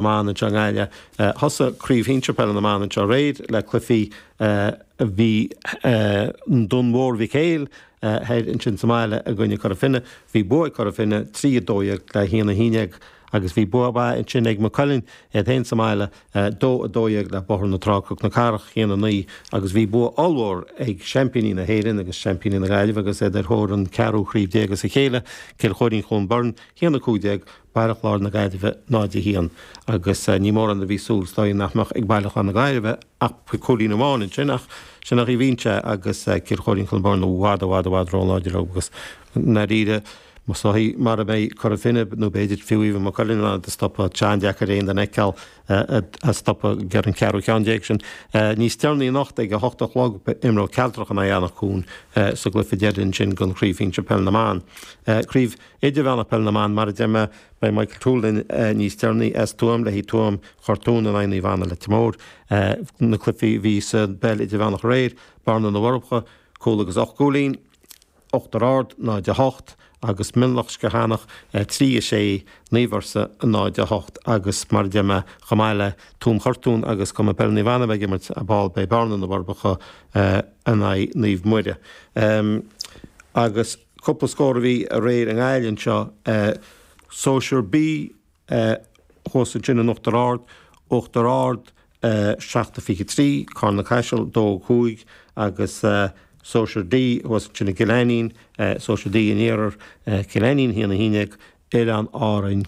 mBan anseo i nGaillimh. Thosaigh Craobh Shinsear Peile na mBan anseo aréir le cluichí a bhí i nDún Mhór Mhic Éil thoir ansin sa mbaile i gcoinne Cora Finne. Bhí bua ag Cora Finne, 3, 12 le 1, 11, agus bhí bua mhaith ansin ag Maigh Cuilinn iad féin sa mbaile, 2, 12 le Bóthar na Trá-Cnoc na Cathrach, 1, 9, agus bhí bua ollmhór ag seaimpíní na hÉireann agus seaimpíní na Gaillimhe agus iad ar thóir an ceathrú chraobh déag as a chéile, Cill Chóirín-Cluain Bheirn, 1, 15. Baile Chláir na Gaillimhe 0 1, agus ní mórán a bhí súil is dóigh nach mbeadh ag Baile Chláir na Gaillimhe ach cúilín amháin ansin, ach sin a bhíonn sé agus Cill Chóirín-Cluain Bheirn i bhfad, i bhfad, i bhfad róláidir agus i ndáiríre, is dóigh, mara mbeidh Cora Finne nó b'fhéidir fiú amháin Maigh Cuilinn in ann iad a stopadh, tá sé an-deacair aon duine a fheiceáil á stopadh ag an cheathrú cheann déag sin. Níos deireanaí anocht ag a hocht a chlog imreoidh Cealtrach in aghaidh Anach Cuain sa gcluiche deiridh ansin den Chraobh Shinsir Peil na mBan, Craobh Idirmheánach Peil na mBan, mar a deir mé, beidh Micheál Ó Tuathail linn níos deireanaí as Tuaim le haghaidh Tuaim Chortún in aghaidh Naomh Anna Leitir Móir. Na cluichí a bhí sa bPeil Idirmheánach aréir, Bearna na bhForbacha, cúl agus ocht gcúilín, Uachtar Ard 0-8 agus Mionlach Sceachánach 3-6, Naomh Fhursa 0-8 agus mar a deir mé, chomh maith le Tuaim Chortún agus Cumann Peile Naomh Anna a bheith ag imirt ar ball, beidh Bearna na bhForbacha in aghaidh Naomh Muire agus. cúpla scór a bhí aréir i nGaillimh anseo, Sóisear B thuas ansin in Uachtar Ard, Uachtar Ard 7 a 23, Carna-Caiseal 2 5, agus Sóisear D thuas ansin i gCill Ainnín, Sóisear D an Iarthair, Cill Ainnín 1 11, Oileáin Árann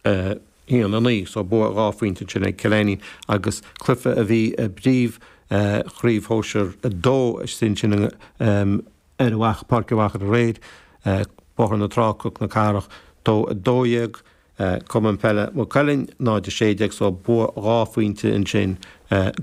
1 9. So bua dhá phointe ansin ag Cill Ainnín agus cluiche a bhí i bpríomhchraobh Shóisear 2 a bhí ansin i nGaillimh. ar mhac páirce mhac an ghréid, bóthar na trá, cnoc na cathrach, dó 12, Cumann Peile Mhaigh Cuilinn 0 16 so bua dhá phointe ansin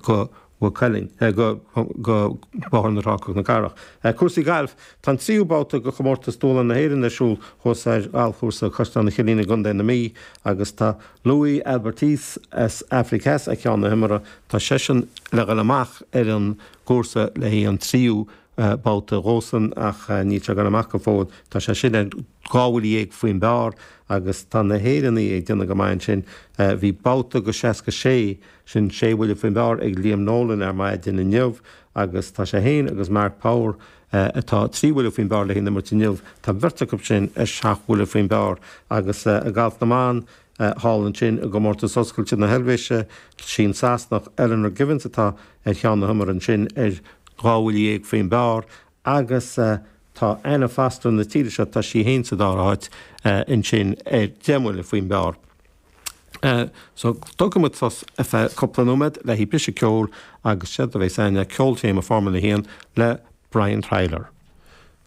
go Mhaigh Cuilinn, go go bóthar na trá, cnoc na cathrach. Cúrsaí Gailf Tá an tríú babhta de Chomórtas Dúshláin na hÉireann ar siúl thuas ar ghalfchúrsa Chaisleán an Chillín i gContae na Mí agus tá Louis Albertse as Afraic Theas ar cheann na himeartha. Tá seisean le dhul amach ar an gcúrsa le haghaidh an tríú babhta dhósan ach níl sé ag goil amach go fóill. Tá seisean ar dhá bhuille dhéag faoin bpar agus tá na hÉireannaigh ag déanamh go maith ansin. Bhí babhta de seasca sé, sin sé bhuille faoin bpar, ag Liam Nolan ar maidin inniu agus tá sé féin agus Mark Power, atá trí bhuille faoin bpar le haghaidh an imirt inniu, tá an bheirt acu sin ar seacht bhuille faoin bpar agus i ngalf na mban, thall ansin i gcomórtas oscailte na hEilvéise, sin Sasanach, Eleanor Givens, atá ar cheann na himeartha ansin ar dhá bhuille déag faoin bpar agus tá Anna Foster na tíre seo, tá sí féin sa dara háit ansin ar deich mbuille faoin bpar. So, tógfaidh muid sos ar feadh cúpla nóiméad le haghaidh briseadh ceoil agus 'séard a bheas ann ná ceoltéama Formula 1 le Brian Tyler.